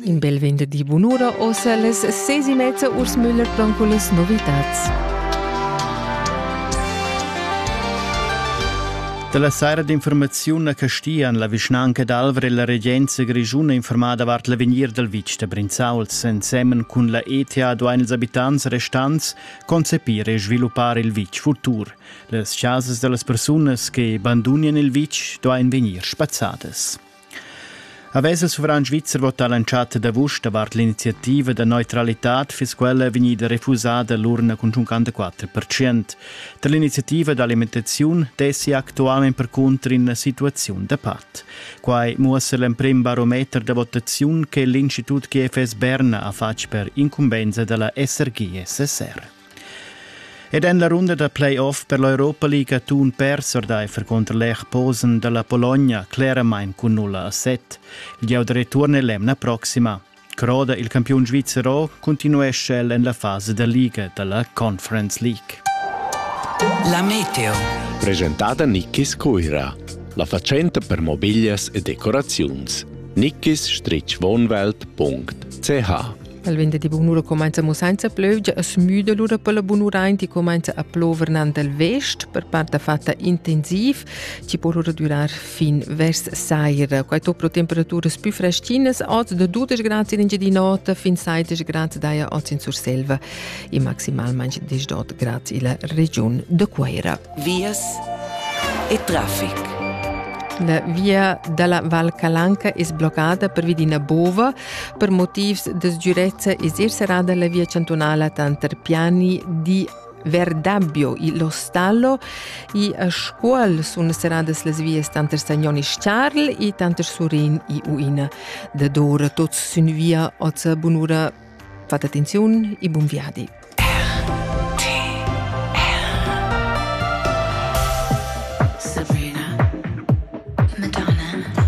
In bel venderdi bunura ossa las seis e mezza Urs Müller con cullas novitats. Dalla saira d'informaziun a Castian la vischnanca d'Alvra e la regenza grischuna informada vart l'avegnir dal vitg da Brinzauls ensemen cun la ETA duain ils abitants restants concepir e sviluppar il vitg futur. Las chasas da las persunas che bandunian il vitg duain vegnir spazzadas. Havess il suvran svizzer votà l'entschatta d'avust davart l'iniziativa da neutralitad, fiss quella vegnida refusada l'urna cun 54%. Tar l'iniziativa d'alimentaziun dessi actualmain percunter ina situaziun da pat. Quai muossa l'emprim barometer da votaziun che l'Institut GFS Berna ha fatg per incumbensa da la SRG-SSR. Ed en la runda da play-off per l'Europa League atun pers ordaifer conter l'Erposen dalla Pologna cleramain cun 0 a 7. Il giau da return è l'emna proxima. Croda il campiun svizzer O continuescha el en la fasa da liga dalla Conference League. La Meteo. Presentada Nickis Cuira. La fatschenta per mobiglias e decoraziuns. Nickis-wohnwelt.ch El venderdi bunura comenza mo senza plövgia e smüda lura per la bunuraint e comenza a plover nan dal vest per part fatta intensiv, ci po lura durar fin vers saira. Quai to pro temperaturas più freschinas, oz da 12 grad in di notte fin 16 grad daja oz in Surselva e maximalmente 18 grad illa regiun de Cueira. vias e traffic. La via dalla Val Calanca es bloccada pervi d'ina bova. Per motivs de sicurezza es er serrada la via cantunala tanter Piani di Verdabbio e Lo Stallo e a Scuol sun serradas las vias tanter Sagnon e Charl e tanter Surin e Uina. Da d'ora tots sün via ozza bunura Fat attenziun e bun viadi! Sabrina, Madonna,